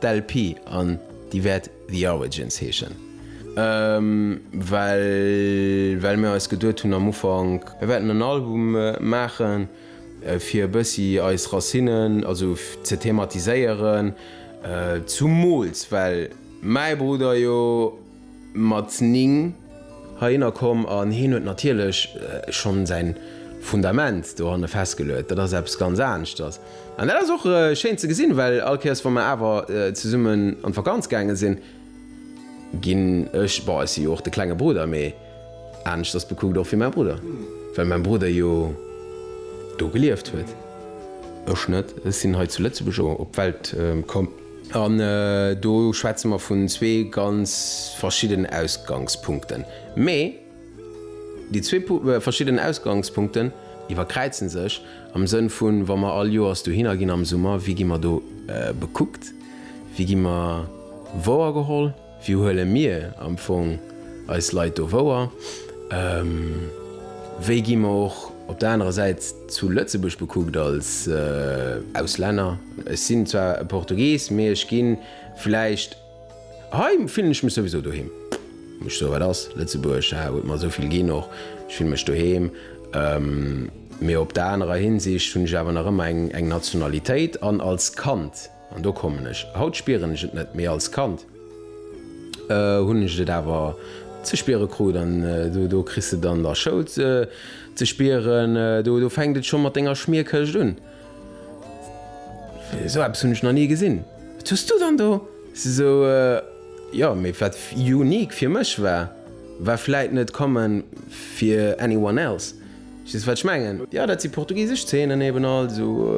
D'LP an déi wäert The Origins heeschen, well well mir eis geduet hunn am Ufank, mir wäerten en Album maachen, fir e bëssi eis Racinnen also ze thematiséieren, zumools well mäi Brudder jo, mat 9 heihinner komm an hien huet natierlech schonn säin Fundament dohanne festgeluet. Dat ass eppes ganz aneschters an dat ass och schéin ze gesinn, well all Kéiers wa mer awer zesummen an d'Vakanz gaange sinn, ginn ech, bon, ech si jo och de klenge Brudder, mee aneschters bekuckt och wéi mäi Brudder, well mäi Brudder jo do gelieft huet, ech net, ech sinn hei zu Lëtzebuerg op d'Welt komm. An do schwätze mer vun zwee ganz verschiddenen Ausgangspunkten. Mee déi zwee verschiddenen Ausgangspunkten iwwerkräize sech am Sënn vu wa mer all Joers dohinner ginn am Summer, wéi gi mer do bekuckt, wéi gi mer wouergeholl? Wéi huele mir am Fong eis Leit do wouer? Wéi gi mer och op der anerer Säit zu Lëtzebuerg bekuckt als Auslänner? Ech sinn zwar e Portugies, mee ech gi vläicht, hei fillen ech mech souwisou doheem, muss ech soen, wat ass Lëtzebuerg? Haha, huet mer esou vill ginn, och ech fille mech doheem. Mee op der anerer Hinsicht hunn ech awer nach ëmmer eng Nationalitéit an als Kand, An do kommen ech. Haut spieren ech et net, mee als Kand hunn ech et awer ze spiere krut. An do kriss de et an der Schoul ze spieren. Do fänkt et scho mat denger Schmierkëscht un. Esou eppes hunn ech nach ni gesinn. Wat hues du dann do? Esou, jo, mee wat unique fir mech war, war vläit net common fir anyone else. Verstees wat ech mengen? Jo, dat si portugisesch Zeenen eben, also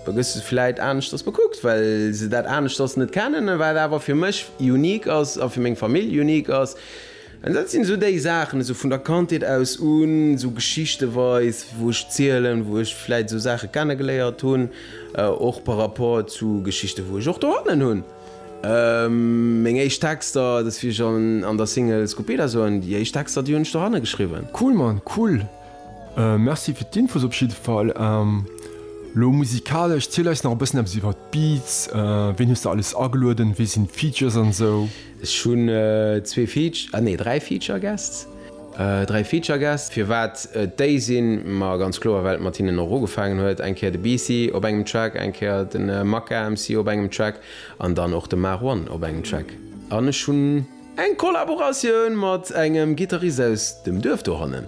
da gëss de se vläit aneschters bekuckt, well se dat aneschters net kennen. Wat awer fir mech unique ass a fir meng Famill unique ass, dat sinn esou déi Saachen, esou vun der Kandheet aus un, esou geschichtenweis, wou ech zielen, wou ech vläit esou Saache kennegeléiert hunn, och par rapport zu Geschichten, wou ech och dohannen hunn. Meng éischt Texter, dat ass wéi ech an der Single Scupeda soen, déi éischt Texter déi hunn ech doranne geschriwwen. Cool Mann, cool! Merci fir d'Infos op jidde Fall. Lo musikalesch, ziel eis nach e bëssen eppes iwwer d'Beats, ween hues de alles agelueden, wee sinn d'Features an esou? Ech hunn zwee Feature, ah nee 3 Feature Guests. Dräi Feature-Gäst, firwat et déi sinn? Ma ganz kloer, well et mat hinnen och ugefaangen huet. Eng Kéier de BC op engem Track, eng Kéier de Maka MC op engem Track an dann och de Marwan op engem Track. An ech hunn. Eng Kollaboratioun mat engem Gittarist aus dem Duerf dohannen.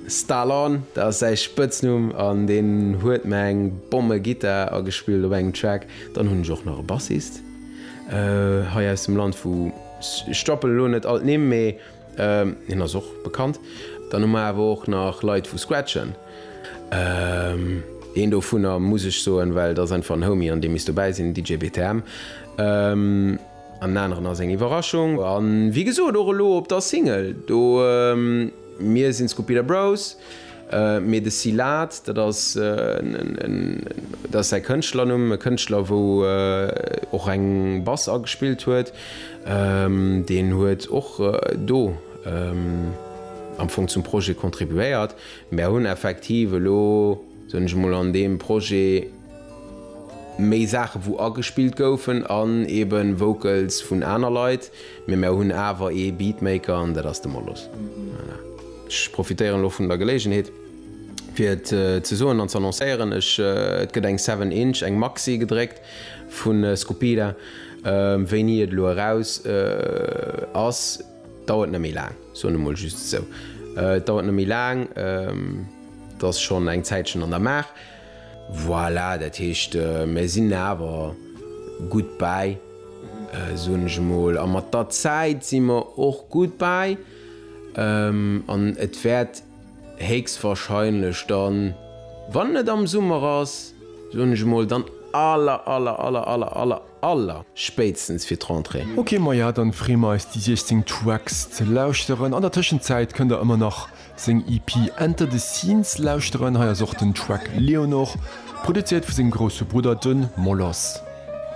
Stalon, dat ass säi Spëtznumm an deen huet mer eng Bomme-Gittar agespillt op engem Track. Dann hunn ech och nach e Bassist hei aus dem Land vu. Ech stoppelen elo net all d'Nimm, mee hien ass och bekannt. Dann hu mer awer och nach Leit vu Scratchen. Een dovunner muss ech soen, well et ass einfach en Homie an dee misst dobäi sinn, den DJ BTM. An den aneren ass eng Iwwerraschung. A wéi gesot och elo op der Single do. Mir sinn d'Scupira Bros, mee de Silat, dat ass säi Kënschtlernumm, e Kënschtler wou och eng Bass agespillt huet, deen huet och do am Fong zum Projet contribuéiert. Mär hunn effektiv elo, soen ech emol, an deem Projet, Méi Saachen wou agespillt goufen an eben Vocals vun aner Leit, mee mär hunn awer ee Beatmaker an dat ass de Molos. Voilà. Ech profitéieren elo vun der Geléigenheet fir et ze soen an z'annoncéieren, ech, et gëtt eng Seven Inch, eng Maxi gedréckt vu Scupida. Wéini et elo eraus ass dauert net méi laang, soen emol just esou. Et dauert net méi laang, et ass schonn eng Zäitchen an der Maach. Voilà, dat heescht, mir sinn awer gutt bäi, soen ech emol. A mat der Zäit si mer och gutt bäi. An et wäert héchstwahrscheinlech dann, wann et am Summer ass, soen ech emol, dann aller, aller, aller, aller, aller, Aller spéitstens fir d'Rentrée. Ok maja dann free mer eis déi 16 Tracks ze lauschteren. An der Tëschenzäit kënnt der ëmmer nach seng EP Enter the Scenes lauschteren. Hei ass och den Track Leonor, produzéiert vu sengem grousse Brudder, den Moloss.